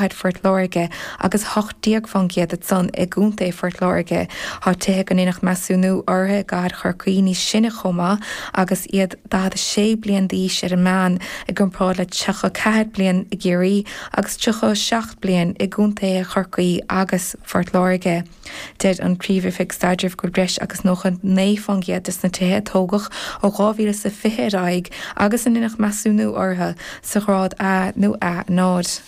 i bPort Láirge agus hocht déag fán gcéad díobh san i gContae Phort Láirge. Tá tithe go ndeineadh measúnú orthu i gcathair Chorcaí níos sine chomh maith agus iad 46 bliain d'aois ar an meán i gcomparáid le 34 bliain i gCiarraí agus 37 bliain i gContaetha Chorcaí agus Phort Láirge. Deir an Phríomh-Oifig Staidrimh go bhfuil breis agus 99 fán gcéad de sna tithe a tógadh ó 2020 ar aghaidh agus a ndeineadh measúnú orthu sa ghrád A nó A0.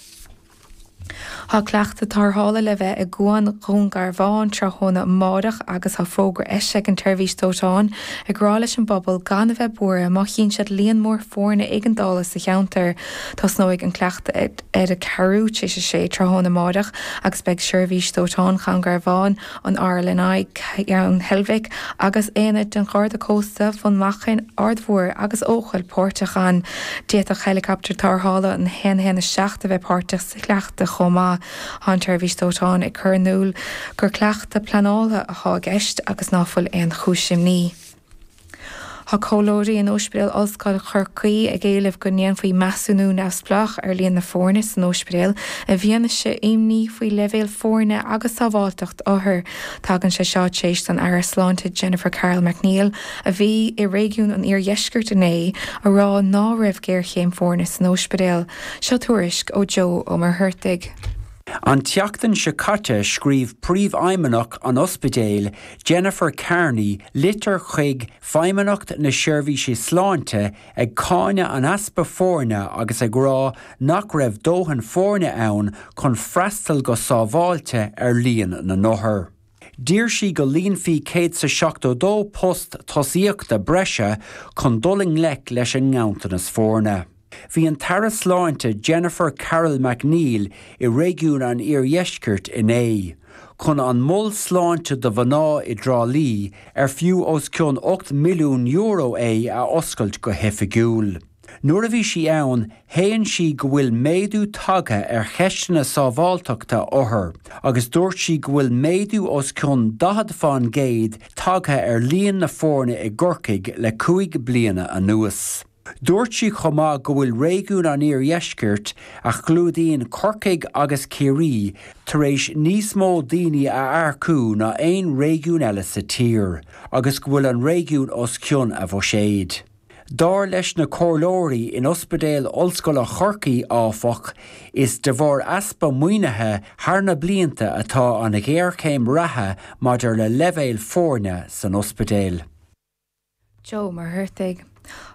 Tá cleachtadh tarrthála le bheith i gCuan Dhún Garbhán tráthnóna amárach agus tá fógra eisithe ag an tSeirbhís Dóiteáin ag rá leis an bpobal gan a bheith buartha má chíonn siad líon mór foirne éigeandála sa cheantar. Tosnóidh an cleachtadh ar a ceathrú tar éis a sé tráthnóna amárach agus beidh Seirbhís Dóiteáin Dhún Garbhán, an RNLI, Ceann Heilbhic, agus aonaid de Gharda Cósta Bhun Machan, Aird Mhóir agus Eochaill, páirteach ann. D'fhéadfadh heileacaptar tarrthála a haon a haon a seacht a bheith páirteach sa chleachtadh chomh maith. Tá an tSeirbhís Dóiteáin ag cur in iúl gur cleachtadh pleanálta atá i gceist agus ná fuil aon chúis imní. Tá comhairleoirí in Ospidéal Ollscoile Chorcaí ag éileamh go ndéanfaí measúnú neamhspleách ar líon na foirne san ospidéal i bhfianaise imní faoi leibhéal foirne agus sábháilteacht othar. Tagann sé seo tar éis don Aire Sláinte Jennifer Carroll MacNeill, a bhí i réigiún an iardheiscirt inné, a rá ná raibh géarchéim foirne san ospidéal. Seo tuairisc ó Joe Ó Muircheartaigh. An tseachtain seo caite scríobh Príomhfheidhmeannach an Ospidéil Jennifer Kearney litir chuig Feidhmeannacht na Seirbhíse Sláinte ag cáineadh an easpa foirne agus ag rá nach raibh dóthain foirne ann chun freastal go sábháilte ar líon na n-othar. D'iarr sí go líonfaí céad is a seachtó dó post tosaíochta breise chun dul i ngleic leis an nganntanas foirne. Bhí an tAire Sláinte Jennifer Carroll MacNeill i réigiún an Iardheiscirt inné, chun an Mol Sláinte do Mhná i dTrá Lí ar fiú os cionn €8 milliún é a oscailt go hoifigiúil. Nuair a bhí sí ann, shéan sí go bhfuil méadú tagtha ar cheisteanna sábháilteachta othar agus dúirt sí go bhfuil méadú os cionn 40 fán gcéad tagtha ar líon na foirne i gCorcaigh le cúig bliana anuas. Dúirt sí chomh maith go bhfuil réigiún an iardheiscirt, a chlúdaíonn Corcaigh agus Ciarraí, tar éis níos mó daoine a earcú ná aon réigiún eile sa tír agus go bhfuil an réigiún os cionn a bhuiséid. Dar leis na comhairleoirí in Ospidéal Ollscoile Chorcaí, áfach, is de bharr easpa maoinithe thar na blianta atá an ghéarchéim reatha maidir le leibhéil foirne san ospidéal. Joe Mac Cárthaigh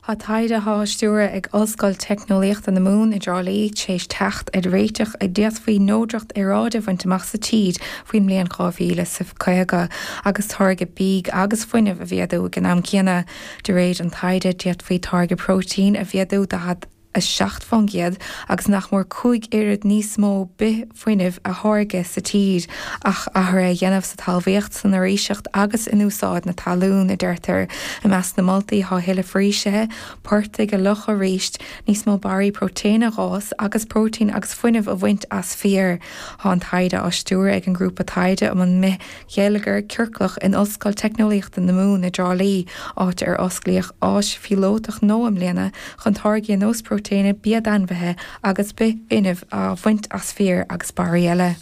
Thá taighde atá á stiúradh ag Ollscoil Teicneolaíochta na Mumhan i dTrá Lí tar éis teacht ar réiteach go bhféadfaí neodracht aeráide a bhaint amach sa tír faoin mbliain 2050 agus táirgeadh bídh agus fuinnimh a mhéadú ag an am céanna. De réir an taighde, d'fhéadfaí táirgeadh próitéin a mhéadú 40 7%, agus nach mór cúig oiread níos mó bithfhuinnimh a tháirgeadh sa tír, ach athruithe a dhéanamh sa talmhaíocht, san fhoraoiseacht agus in úsáid na talún, a deirtear. I measc na moltaí thá tuilleadh foraoisithe, portaigh a fhliuchadh arís, níos mó barraí próitéine a dh'fhás agus próitéin agus fuinneamh a bhaint as féar. Thá an taighde á stiúradh ag an Grúpa Taighde um an mBith Gheilleagar Ciorclach in Ollscoil Teicneolaíochta na Mumhan i dTrá Lí, áit ar osclaíodh áis phíolótach nua i mbliana chun táirgí ar nós próitéine, bia d'ainmhithe agus bithfhuinnimh a bhaint as féar agus barraí eile.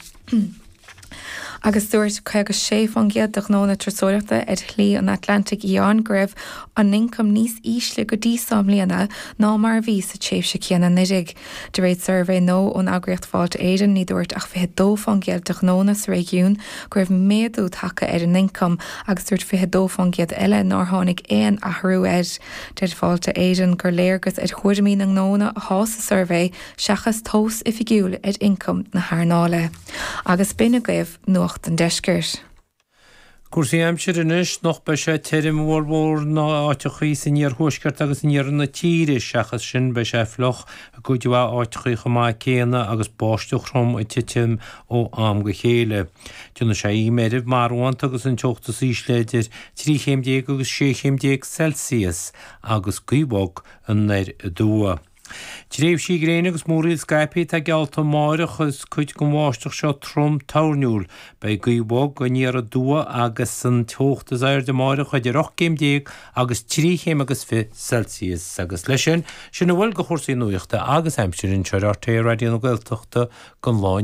Agus dúirt 56% de ghnónna turasóireachta ar Shlí an Atlantaigh Fhiáin go raibh a n-ioncam níos ísle go dtí seo i mbliana ná mar a bhí sa tréimhse céanna anuraidh. De réir suirbhé nua ón eagraíocht Fáilte Éireann, ní dúirt ach 22 faoin gcéad de ghnónna sa réigiún go raibh méadú tagtha ar a n-ioncam agus dúirt 22 faoin gcéad eile nár tháinig aon athrú air. Deir Fáilte Éireann gur léargas ar thuairimí na ngnónna athá sa suirbhé seachas tomhas oifigiúil ar ioncam na hearnáile. Agus b'in agaibh Nuacht an Deiscirt. Cúrsaí aimsire anois, anocht beidh sé tirim i bhformhór na n-áiteachaí san iarthuaisceart agus in iarthar na tíre, seachas sin beidh sé fliuch i gcuid mhaith áiteachaí chomh maith céanna agus báisteach throm ag titim ó am go chéile. Déanfaidh sé oíche mheirbh marbhánta agus an teocht is ísle idir trí chéim déag agus sé chéim déag Celsius agus gaoth bhog anoir aduaidh. Tréimhsí gréine agus múraíl scaipthe atá geallta amárach is cuid den bháisteach seo trom toirniúil. Beidh gaoth bhog aniar aduaidh agus an teocht is airde amárach idir 18 gcéim agus 3 chéim agus fiche Celsius. Agus leis sin, sin a bhfuil de chúrsaí nuachta agus aimsire anseo ar RTÉ Raidió na Gaeltachta don lá inniu.